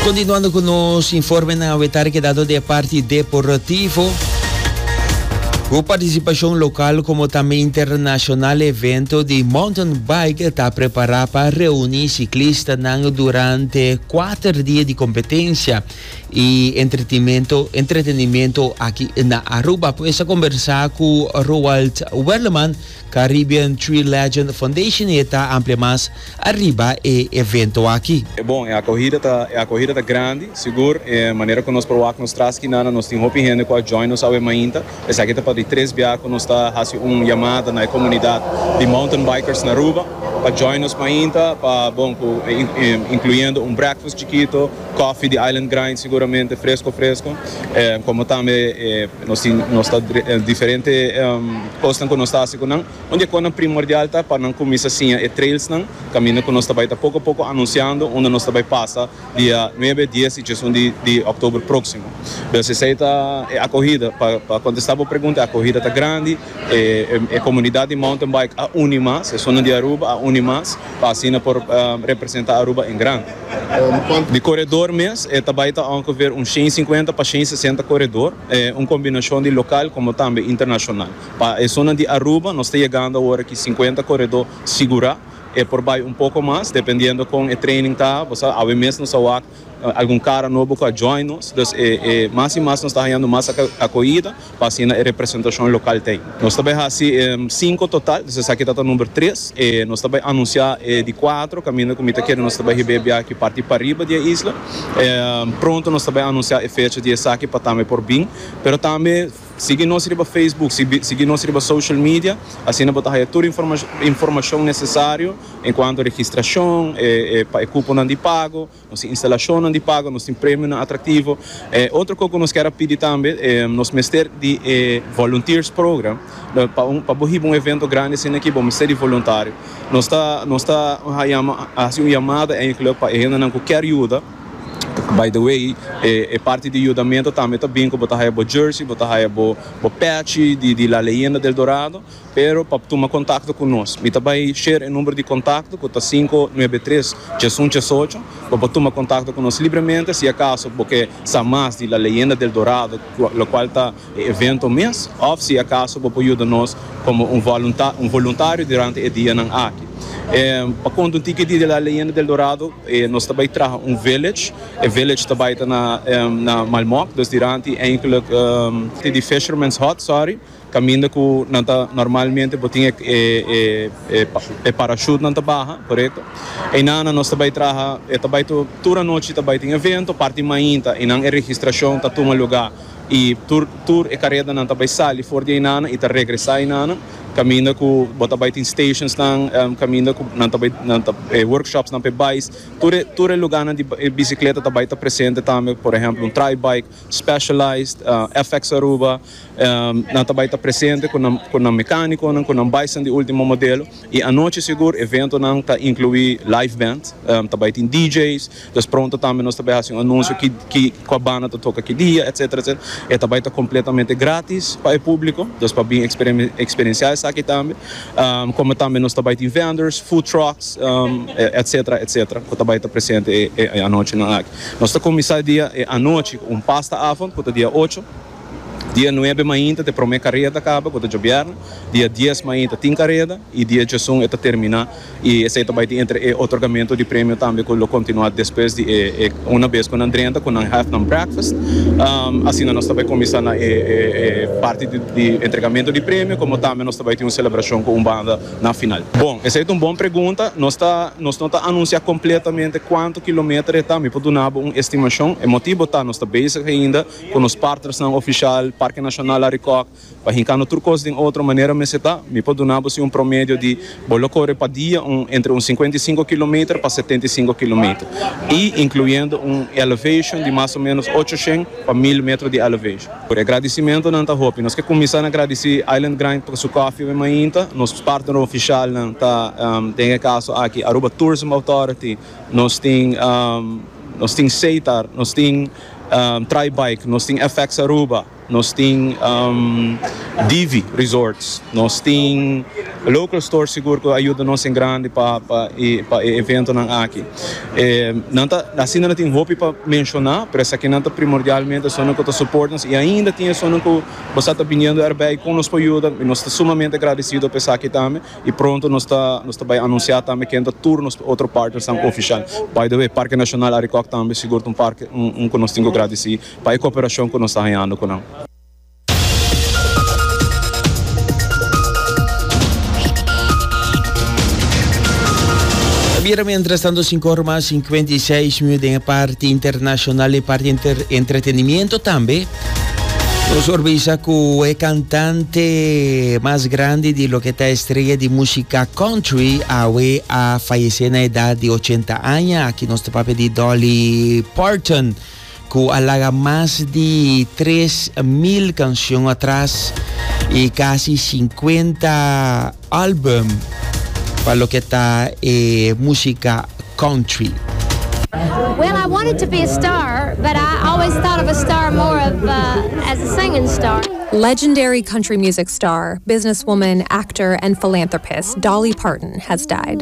Continuando cu nos informenan a wetar kedado di e parti deportivo. Cu participacion local como tambe internacional evento di mountain bike ta prepara pa reuni ciclistanan durante kuater dia di competencia y entretenimento, entretenimento aki na Aruba. Pues a conversa cu Roald Werleman, Caribbean Tree Legend Foundation e ta amplia mas ariba e evento aki. E bon, e akohida ta e akohida ta grandi, sigur, e manera ku nos por wak nos tras skinnan nan nos tin hopi hende ku a join nos awe mainta. Esaki ta pa di tres bia ku nos ta hasi un yamada na e komunidat di Mountain Bikers na Aruba pa join nos mainta pa bon ku inkluyendo un breakfast chikito, kòfi di Island Grind siguramente fresko fresko, komo tambe e. Nos tin nos ta diferente cosnan cu nos ta haci cu nan. Un di e cosnan primordial ta pa nan cuminsa siña e trailsnan, caminda cu nos ta bay ta poco a poco anunciando unda nos ta bay pasa dia nuebe, dies y diesun di october proximo. Pues esey ta e acogida. Pa pa contesta bo pregunta e acogida ta grandi. E comunidad di mountain bike a uni mas, esun nan di Aruba a uni mas. Pa asina por representa Aruba en gran. Di koredor mes e ta bai ta ongeveer un shen sinkuenta pa shen sesenta koredor, un kombinashon di lokal komo tambe internashonal. Pa e zonan di Aruba nos ta yegando awor aki sinkuenta koredor sigurá, e por bai un poko mas dependiendo kon e training ta, bo sa, awe mes nos a wak Algun cara nobo cu a join nos, dus e mas y mas nos ta hañando mas acoida pa asina e representacion local ta ey. Nos ta bay haci cinco total, dus esaki ta ta number tres, y nos ta bay anuncia e di cuatro, caminda cu mi ta kere nos ta bay hiba e biaha aki parti pariba di e isla. Pronto nos ta bay anuncia e fecha di esaki pa tambe por bin, pero tambe. Sigui nos riba Facebook, sigui nos riba social media, asina bo ta haya tur informashon nesesario enkuanto registrashon, pa e kuponan di pago, nos tin instalashonnan di pago, nos tin premionan atraktivo. Otro kos ku nos kier a pidi tambe, nos mester di e volunteers program, pa bo hiba un evento grandi asina aki bo mester di voluntario. Nos ta hasi un yamada enkele pa e hendenan ku kier yuda. By the way, e parti di yudamento tambe ta bin ku bo ta haya bo jersey, bo ta haya bo patch di La Leyenda del Dorado, pero pa tuma kontakto ku nos, mi ta bai share e number di kontakto ku ta sinku nuebe tres tres un tres ocho, bo por tuma kontakto ku nos libremente si akaso bo ke sa mas di La Leyenda del Dorado, lokual ta e evento mes òf si akaso bo por yuda nos komo un voluntá un voluntario durante e dianan aki. E pa kondutí ke Dia de la Leyenda del Dorado e nos ta bai traha un village, e village ta bai ta na e na Malmok, dus durante eindelijk e te di Fisherman's Hut, sorry, kaminda ku nan ta normalmente bo tin e e e parachute nan ta baha, korekto. Einan nan nos ta bai traha e ta bai tur anochi ta bai tin evento parti mainta einan e registrashon ta tuma lugá. I tur tur e karedanan ta bai sali for di einanan i ta regresá einanan, kaminda ku bo ta bai tin stationsnan, kaminda ku nan ta bai nan ta e workshopsnan p'e bais. Tur e tur e lugánan di e bisikleta ta bai ta presente tambe, por ehèmpel un Tri-Bike, Specialized, FX Aruba, nan ta bai ta presente ku nan ku nan mekánikonan, ku nan baisnan di último modelo. I anochi sigur eventonan ta inkluí live band, ta bai tin DJ's. Pues pronto tambe nos ta bai haci un anuncio ki cua banda ta toca ki dia etc. E ta bai ta completamente gratis pa e publico, dus pa bin experiencia esaki tambe. Como tambe nos ta bai tin vendors, food trucks etc. Etc. Cu ta bai ta presente e anochinan aki. Nos ta cuminsa e dia e anochi cu un pasta avond cu ta dia ocho, dia nuebe mainta ta e prome careda caba cu ta djobierne, dia dies mainta tin careda y dia djesun e ta termina. y esey ta bay tin entre e otorgamento di premio tambe cu lo continua despues di e una bes cu nan drenta cu nan have nan breakfast asina nos ta bay cuminsa na e parti di entregamento di premio como tambe nos ta bay tin un celebracion cu un banda na final. Bon, esey ta un bon pregunta, nos ta nos no ta anuncia completamente cuanto kilometer e ta, mi por duna bo un estimacion, e motibo ta nos ta bezig ainda cu nos partnersnan oficial, Parke Nacional Arikok, Pa hincando tur cos den otro manera mester ta, mi por duna bo si un promedio di bo lo core pa dia un entre un cincuenta y cinco kilometer pa setenta y cinco kilometer y incluyendo un elevation di mas o menos ochocientos pa mil metro di elevation. Por e agradicimentonan ta hopi. Nos ke cuminsa na gradici Island Grind pa su coffee hopi mainta. Nos partner oficialnan ta den e caso aki Aruba Tourism Authority, nos tin nos tin Seitar, nos tin Tri Bike, nos tin FX Aruba. Nos tin Divi Resorts, nos tin local stores sigur cu a yuda nos en grandi pa e eventonan aki. Asina nan tin hopi pa menciona, pero esakinan ta primordialmente esunnan cu ta support nos y ainda tin esunnan cu bo sa ta biniendo erbij con nos por yuda y nos ta sumamente agradecido pa esaki tambe y pronto nos ta bay anuncia tambe ken ta tur nos otro partnersnan oficial. By the way, Parke Nacional Arikok tambe sigur ta un parke cu nos tin cu gradeci Pa e cooperashon cu nos ta hañando cu nan. Ta bira mientras tanto sinku ora mas sinkuenta i seis minu den e parti internashonal i parti entretenimiento tambe. Nos por bisa ku e kantante mas grandi di loke ta estrella di músika country awe a fayesé na edat di ochenta aña. Aki nos ta papia di Dolly Parton. ku a laga mas di tres mil kanshon atras i kasi sinkuenta álbum pa loke ta e músika country. Well I wanted to be a star but I always thought of a star more of as a singing star. Legendary country music star, businesswoman, actor and philanthropist Dolly Parton has died.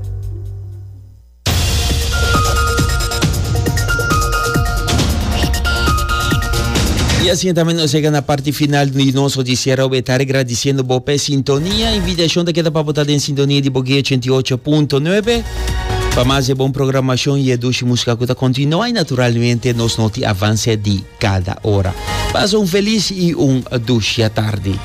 Y asina tambe nos llega na parti final di nos noticiero be tarde agradeciendo bo pe sintonia. Invitacion ta keda pa bo ta den sintonia di Bogué 88.9. Pa mas e bon programacion y e dushi musica cu ta continua y naturalmente nos noti avance di cada hora. Pasa un feliz y un dushi tarde.